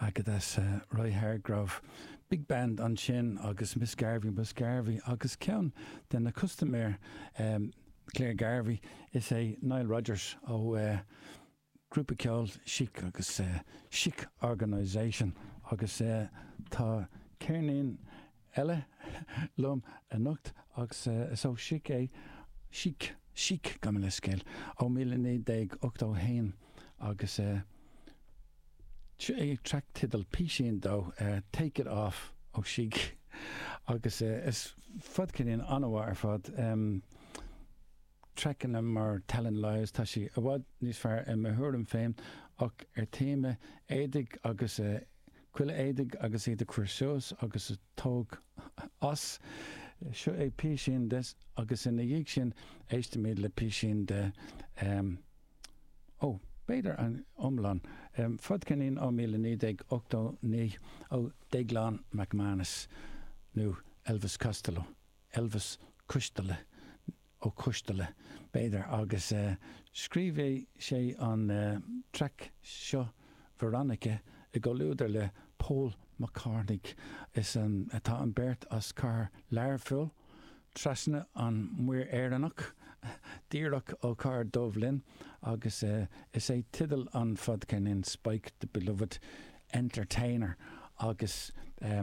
Agus Roy Hargrove, big band ansin, agus Miss Garvey, Ms Garvey, agus ceann de na custaiméir, Clare Garvey, is é Nile Rodgers ó ghrúpa ceoil Chic agus Chic Organisation, agus tá ceirnín eile liom anocht agus is ó Chic é, Chic, Chic, gabh mo leithscéal, ó míle naoi déag ochtó a haon agus eh track title, písín dó, Take it off ó Chic agus is fadcheirnín an-mhaith ar fad, em traiceanna mar Telling Lies, tá sí i bhfad níos fearr i mo thuairim féin ach ar téama éadaigh agus eh Chuile éadaigh agus iad a chur suas agus a tóg as, seo é písín de agus ina dhiaidh sin éistimid le písín de em. ó, b'fhéidir an iomlán, em. fadcheirnín ó míle naoi déag ochtó naoi ó Déaglán McManus nó Elvis Costello, Elvis Coisteala, Ó Coistealla, b'fhéidir, agus eh scríobhadh sé an eh traic seo Veronica i gcomhluadar le Paul McCartney is an, tá an beirt as cathair Learphoill, Trasna an Mhuir Éireannach, díreach ó cathair Duibhlinn agus eh is é teideal an fadcheirnín sin Spike the Beloved Entertainer agus eh.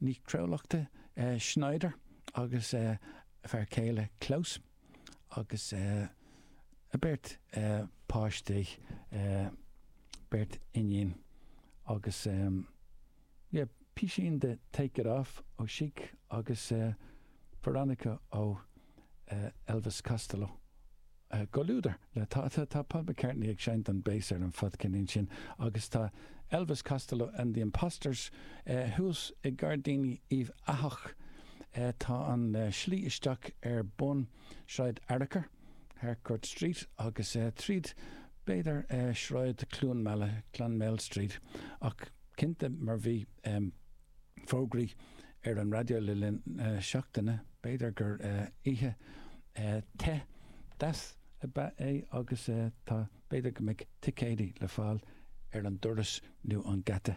Ní Chruálachta, Schneider agus a fear céile Klaus agus a beirt páistí, beirt iníon agus yeah písín de Take It Off ó Chic agus Veronica ó Elvis Costello. I gcomhluadar le Tá Tá Paul McCartney ag seinnt an bass ar an fadcheirnín sin agus tá Elvis Costello and the Imposters thuas i Gairdíní Uíbh Eathach. Tá an slí isteach ar bun Sráid Fhearchair, Harcourt Street, agus tríd b'fhéidir Sráid Chluain Meala, Clonmel Street, ach cinnte mar bhí. fógraí ar an raidió le linn na seachtaine. B'fhéidir gur oíche te, deas ab ea é agus tá b'fhéidir go mbeidh ticéidí le fáil ar an doras nó an geata.